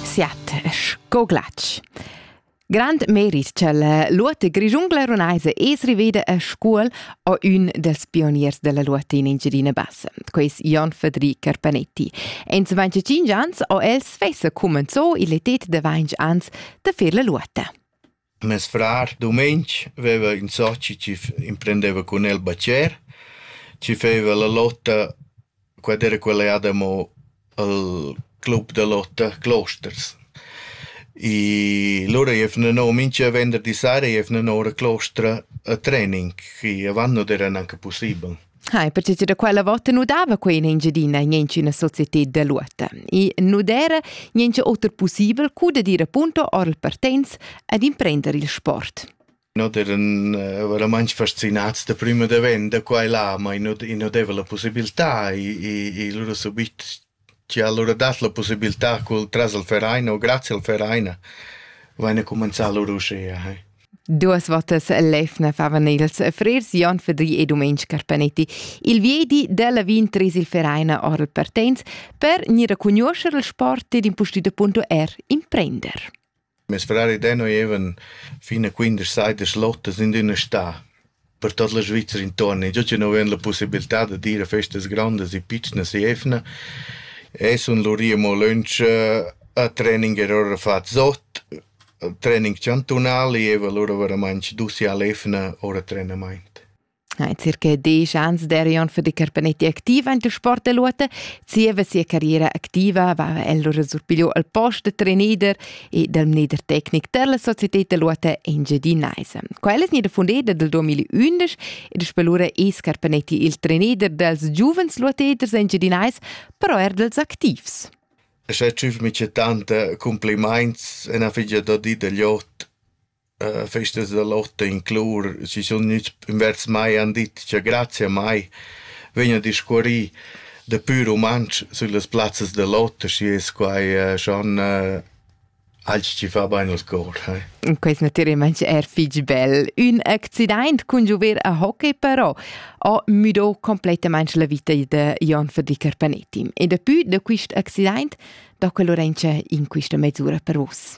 Siat sco glatsch. Grand merit ch'el luotta grigiungla runaisa es riveda a Scuol o ün dels pioniers della luotta in Engiadina Bassa, quais Jon Federic Carpanetti. En 25 ans o el svessa cumenzò il etet da 20 ans da fer la luotta. Mes frar dumeng veva ün soci chi imprendeva cun el bacher, chi feva la lotta, quad era quella jà damo al club da lotta Closters. I lura eiv nanò mincha venderdi sera eiv nanò la clostra a trening, chi avant non era gnanca pussibel. Hai, pertgei da quella vota nu dava quei in Engiadina in ina società da luota. I nu era niente oter possibel cu da dire appunto or il partenz ad imprendere il sport. Noi eran uh, veramente fascinati da prima da ven da qua e là, ma i non, i non dava la possibilità, i, i, i loro subito Chi ha alura dat la pussibiltà cul tras al Verein o grazia al Verein vaina cumanzà lur uschea, he. Duos votas l'eivna favan ils frers Jon Fadri e Dumeng Carpanetti. Il viedi della Wien tris il Verein ora il partenz per gnir a cugnuoscher il sport ed impustüt appunto er imprender. Mes frars ed ella evan fin a quindesch saidas lottas in üna stà per tuot la Svizra intuorn e già chi nu avain la pussibiltà dad ir a festas grandas e pitschnas e evna e sun lur i amo lönch a training er ora fat sot, training chantunal e eva lura varamaing dus i a l'evna ora trenamaint. Hai circa diesch ans derion für die Carpanetti aktiva in der Sporteluote. Zieva sia carriera activa va el lura surpigliu al post da trainer e dal mneder tecnic della Società Luote Engiadinaisa. Quella es gnida fundeda dal 2011 ed es lura es Carpanetti il trainer dels giuvens luoteders engiadinais, però er dels activs. E se tschüf mi c'è tante complimaints e na figlia da di degli ot festas da lotta inclur, si sun gnüts invers mai han dit cha grazia a mai vegn a discuorrir dapü rumantsch süllas plazzas da lotta, schi es quai schon alch chi fa bain al cor. Quest naturalmaing er fich bel. Ün accidaint cun giover a hockey però ha müdo completamaing la vita da Jon Verdicker Panetti. E dapü da quist accidaint do que Lorenza in quista mesura per vos.